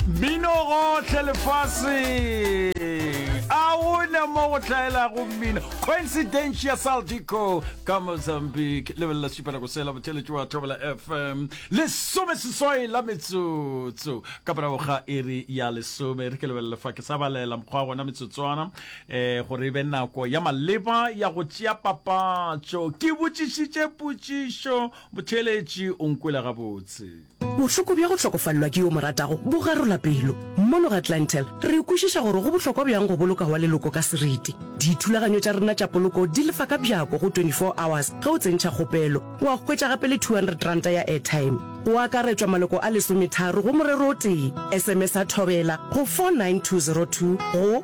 Mmino gohle lefase a gona mo go tlhaelago mmino coincidentia saldico ka mozambique lebelela supela go sela botheletši wa thobela fm lesome seswai la metsotso ka morago ga iri ya lesome re ke lebelele fa ke sa balela mokgwa gona metsotswana um eh, gore e be nako ya maleba ya go tšea papatšo ke botšišitše potšišo botheletši o nkwela gabotse Bohloko bja go hlokofalelwa ke yo o mo ratago bo garola pelo. Mono ga Clientele, re kwešiša gore go bohlokwa bjang go boloka wa leloko ka seriti. Dithulaganyo tša rena tša poloko di lefa ka bjako go 24 hours ge o tsentšha kgopelo, wa hwetša gape le R200 ya airtime. Go akaretšwa maloko a lesometharo go morero o tee. SMS-a Thobela go 49202 go.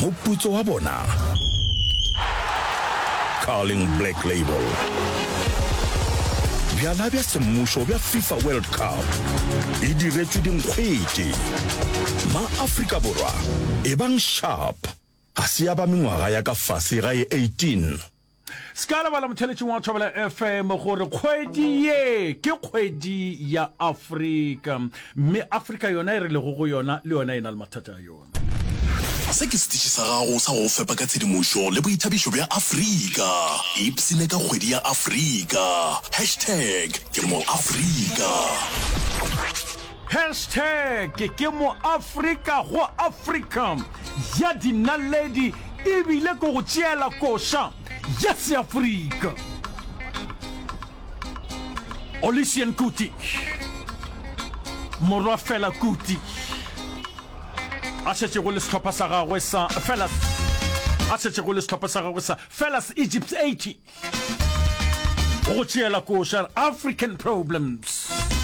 Moputso wa bona, Carling Black Label. Bjala bja semmušo bja FIFA World Cup e diretšwe dinkgwete. Ma-Afrika Borwa, ebang sharp, ga se ya ba mengwaga ya ka fase ga e 18. Se ka lebala motheletšing wa Thobela FM gore kgwedi ye ke kgwedi ya Afrika mme Afrika yona e re lego go yona le yona e na le mathata a yona. Se ke setiši sa gago sa go go fepa ka tshedimošo le boithabišo bja Afrika. Ipshine ka kgwedi ya Afrika. Hashtag ke mo Afrika. Hashtag ke mo Afrika go Afrika ya dinaledi ebile ke go tšeela koša ya Seafrika. Olisian Kuti, morwa Fela Kuti, a šetšego le sehlopha sa gagwe sa Felas a šetšego le sehlopha sa gagwe sa Felas Egypt 80 go tšeela koša African Problems.